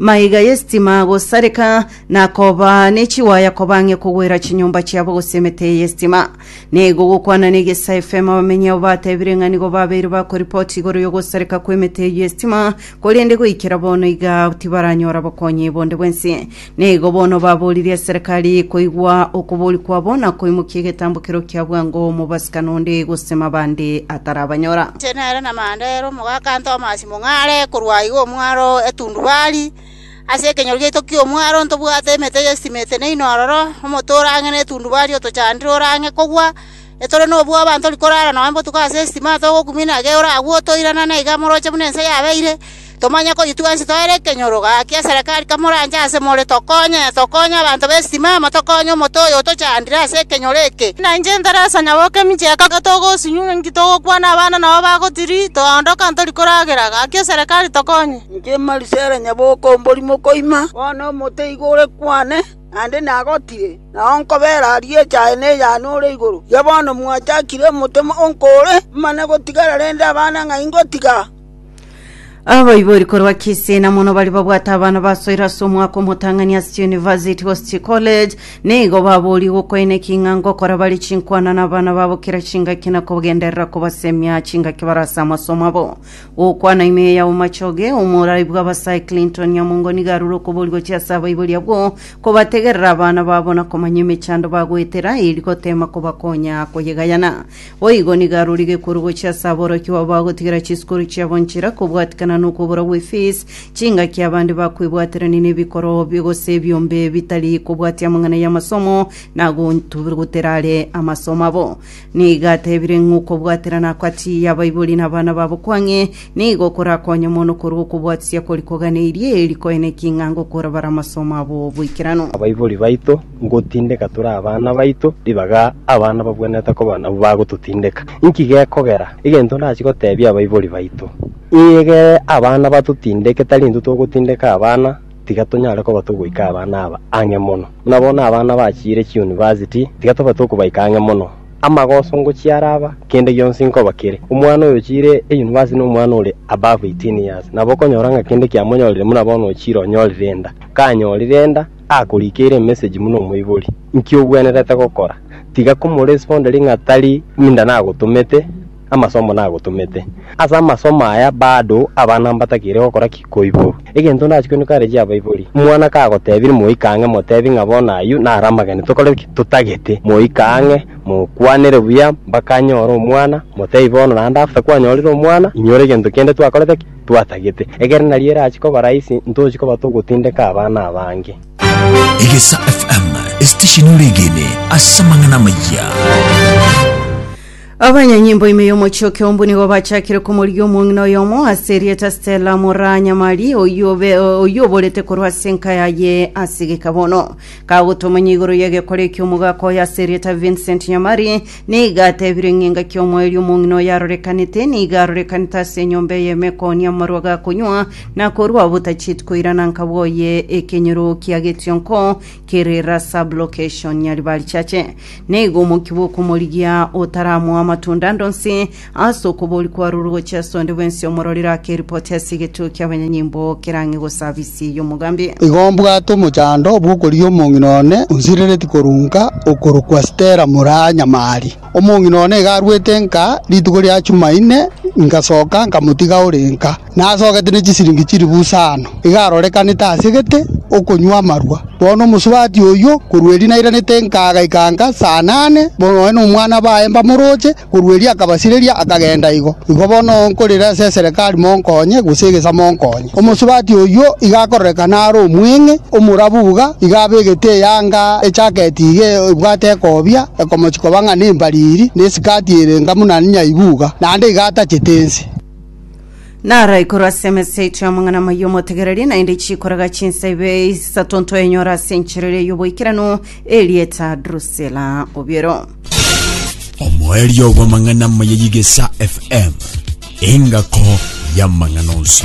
Maiga y'esitima gosareka, na koba ne chiwaya koba ang'e kogwera chinyomba chiabo gose emete y'esitima. Nigo gokwana n'egesa FM abamenyi abo batebire ng'a nigo babeire bakoripoti igoro y'ogosareka kw'emete eyio y'esitima, korende goikera bono iga tibaranyora bokonyi bonde bwensi. Nigo bono baboririe eserekari koigwa okobori kwabo na koimokia egetambo kerio kia bwango mobasika nonde gose mabande atarabanyora. Inche nere namanya nere omogaka Tomasi mong'are korwa aiga omwaro etundubari, ase ekenyoro giaito ki'omwaro ntobwate emete y'estimeti naino ororo, omote ore ang'e na etundubari otochandire ore ang'e kogwa, etore nobwoba ntori korara nonya botuko ase estima togokumia na ege oragwe otoirana na iga moroche buna ense yabeire. Tomanye ko intwe twensi twere ekenyoro. Gaki eserekari kamoranche ase more, tokonye, tokonye abanto b'esimama, tokonye omote oyo otochandire ase ekenyoro eke. Na inche Teresa, nyaboke emicheka, togosunywa ng'a inki togokwana abana nabo bagotiri, toondoka ntori koragera. Gaki eserekari tokonye. Inche Marisela, nyaboke omorimo koima, bono omote igo ore kwane, naende nagotire, nao nkobera aria echa aye ne eyane ore igoro. Erio bono mwachakire omote onko ore, mane gotigara rende abana ng'a ingotiga. Abaibori korwa Kisii na mono bari babwate abana basoire ase omwaka omotang'ani ase University Host College nigo babori gokoina eking'ango kora bari chinkwana na abana babo kera chingaki na kogenderera kobasemia chingaki bara ase amasomo abo gokwana ime ya Omachoge omorai bw'abasae Clinton Nyamongo nigo arure okobori gochia ase abaibori abwo kobategerera abana babo na komanya emechando bagoetera eri gotema kobakonya koyegayana Boigo nigo arorire korwa gochia ase aborokia babo bagotigera chisukuru chiabo nchera kobwatikana nokobora gw'efees, chingaki abande bakwebwaterania nebikoro bi- gose ebiombe bitari kobwatia amang'ana y'amasomo na gontugutera are amasomo abo. Nigo atebire ng'a okobwaterana agati y'abaibori na abana babo kwang'e nigo korakonye mono korwa okobwatisia kori koganeirie, eri koene eking'ango korabare amasomo abo 'boikeranu. Abaibori baito Ngotindeka tore abana baito ribaga abana babwenerete koba nabwo bagototindeka. Inki gekogera? Egento ndachie gotebia abaibori baito, egere abana batotindeke tari intwe togotindeka abana, tiga tonyare koba togoika abana aba ang'e mono. Buna bono abana bachiire chiunivasiti, tiga tobe tokobaika ang'e mono. Amagoso ngochia araba, kende gionsi nkoba kere. Omwana oyo ochiire eyunivasiti na omwana ore above eighteen years, nabo okonyora ng'a kende kiamonyorire buna bono ochiire onyorire enda. Kanyorire enda, akorikeire emessage buna omoibori, nki ogwenerete gokora? Tiga komoresponderie ng'a tari ninda nagotomete, amasomo nagotomete. Ase amasomo aya bado abana mbatakeire gokora ki? Koiborwa. Egento ndachie koinwe kare chia abaibori, omwana kagotebiri moika ang'e motebi ng'a bono ayio naro amagene tokore ki? Totagete. Moika ang'e, mokwanere buya mpaka anyore omwana, motebi bono naende after kwanyorire omwana, inyore egento kende twakorete ki? twatagete, ekero nario erache koba rahisi ntochi koba togotindeka abana abange. Egesa FM, esitesheni oregene ase amang'ana amayia. Abanyanyimbo ime y'omochie o Kiombu nigo bachakire komorigia omong'ina oyomo ase erieta Stella Moranyamari oyio obe- oyio oborete korwa ase enka yaye ase gekabono kagotomanya igoro y'egekore eki'omogaka oyo ase erieta Vincent Nyamari Nigo atebire ng'a engaki omoerio omong'ina oyo arorekanete, nigo arorekanete ase enyomba eye emekoni amarwa gakonywa, na korwa obotachieti koirana nkabwe oye ekenyoro kia getionko kere la sublocation Nyaribarichache. Nigo omokia bw'okomorigia otaramoa amatunda ande onsi Ase okobori kwarurwe gochia ase onde bwensi omororire ake eripoti ase egetuo ki'abanyanyimbo kerang'e gosabisia ey'omogambi. Igo mbwate omochando bw'okorigia omong'ina one onsirereti korunka, okorokwa Stella Muranyamari. Omong'ina one iga arwete nka rituko ria Chumaine, ingasoka nkamotiga ore nka. Nasogete ne chisiringi chilifu isano. Iga arorekanete asegete okonywa amarwa. Bono omosubati oyio, korwa erinde nairanete nka agaika nka saa nane, bono nonye nomwana baye mbamoroche, Korwa erio akabasireria, akagenda. Igo igo bono nkorera ase eserekari monkonye, gose egesa monkonye. Omosubati oyio iga akororeka nare omweng'e, omorabu iga, iga abegete eyanga ejaketi iga ebwate ekobia, ekomochi koba ng'a nembariri, na esikati ere enga buna nyaibu iga, naende iga atachete ense. Naro igoro ase emeseito y'amang'ana amayia omotegereri, naende chikorega chinsa ibe isato ntoenyora ase encherero y'oboikeranu, erieta Drusila. Obiero. omoerio bw'amang'ana amaya y'Igesa FM, engako y'amang'ana onsi.